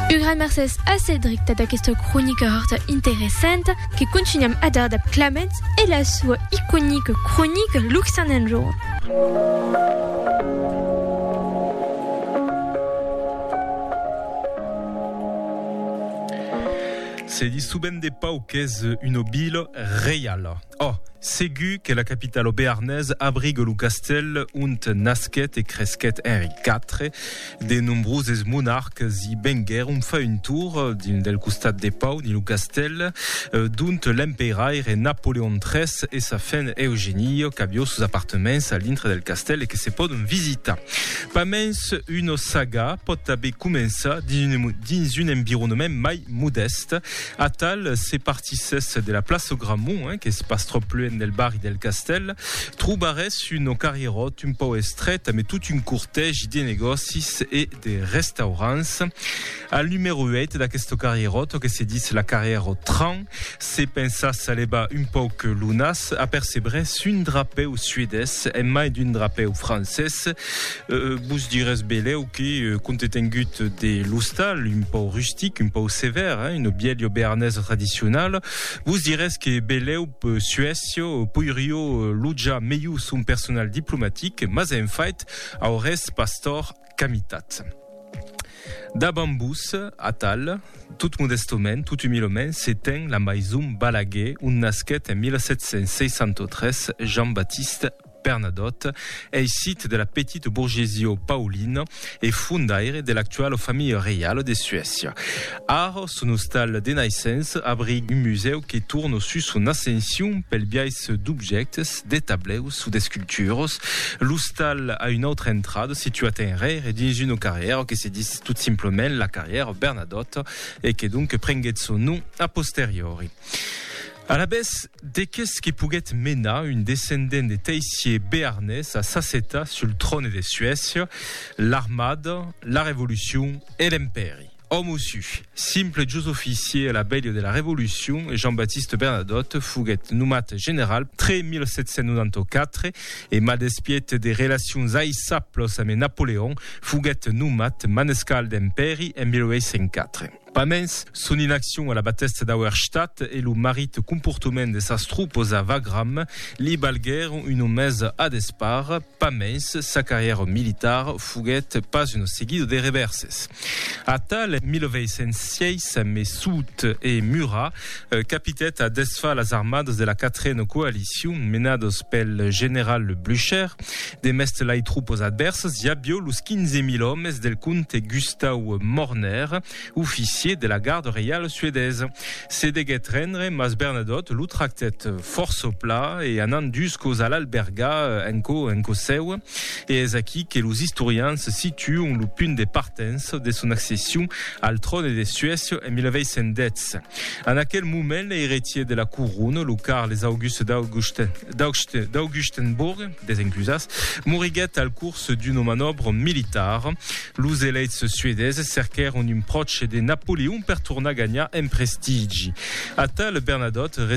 Un gran mercés a Cedric tà d'aquesta cronica hòrta interessanta que contunham a dar dab Clamènt e la soa iconica cronica Luxan enjorn. Se dissoben de pauc qu'es una vila reiala. Oh! segur que la capital au Béarnès abrigue lo castèl ont nasquèt e cresquèt Henri iv. De nombroses monarques i venguèron far un tour dins del costat de Pau, dins lo castèl d'ont l'empeiraire Napoleon iii e sa fen Eugenio qu'avió sos apartements a l'intre del castèl e que se pòdon visitar. Pas mens una saga pòt tanben començar dins un environnement mai modèst. Atal se partissèsse de la plaça Grammont, qu'es pas tròp luenh del barri del Castèl, trobarèsse un carrieròt un pauc estrèt amé tot un cortègi de negòcis e de restaurants. Al numèro 8 d'aqueste carrieròt, que se ditz la carrièra au train, se pensatz a levar un pauc lo nas, apercebrèsse un drapèu suedés en mai d'un drapèu francés. Vos dirés belèu que, compte tengut de l'ostal, un pau rustic, un pau sevèr, una bièlha bearnesa tradicionala, vos dirés que belèu Suècia poirió lojar melhor son personal diplomatic, mas en fait aurés pas tòrt qu'amitat. Davant vos, atal, tot modèstament, tot umilament, se ten la maison Balaguer, ont nasquèt en 1763 Jean-Baptiste. Bernadotte ei sit de la petite bourgesie paulina e fondaire de l'actuala familha reiala de Suècia. Ara, son ostal de naissença abriga un musèu que torna sus son ascension pel biais d'objèctes, de tableus o d'esculturas. L'ostal a una autra entrada situat enrere dins una carrièra que se ditz tot simplament la carrièra Bernadotte e que donc prenguèt son nom a posteriori. Alavetz, de que's que poguèt menar un descendent de teissier bearnés a s'assetar sul tròne de Suècia, l'armada, la revolucion e l'empèri. Òme o su, simple jos oficier a la velha de la revolucion, Jean-Baptiste Bernadotte foguèt nomat general tre 1794 e, mal despiet de relacions aissables ame Napoleon, foguèt nomat manescal d'empèri en 1804. Pas mens, son inaccion a la batèsta d'Auerstadt e lo marit comportament de sas tropas a Wagram li balguèron una mesa a despart. Pas mens, sa carrièra militar foguèt pas una seguida de revèrses. Atal, 1806, Messoud e Murat Capitèt a desfar las armadas de la quatrena coalicion menadas pel general Blücher. Demest lai tropas advèrsas i avió los 15.000 òmes del comte Gustau Morner, oficier de la garda reiala suedesa. Se deguèt rendre, mas Bernadotte lo tractèt fòrça pla e anant dus còps a l'albergar en cò en cò seu. E es aquí que los istorians situon lo punt de partença de son accession al tròne de Suècia en 1810. Paris. En aquel moment, l'eiretier de la Couronne, lo Carles Auguste d'Augustenbourg, desencusas, moriguèt al curs d'una manòbra militara. Los eleits suedeses cerquèron un pròche de Napoleon per tornar ganhar en prestigi. Atal Bernadotte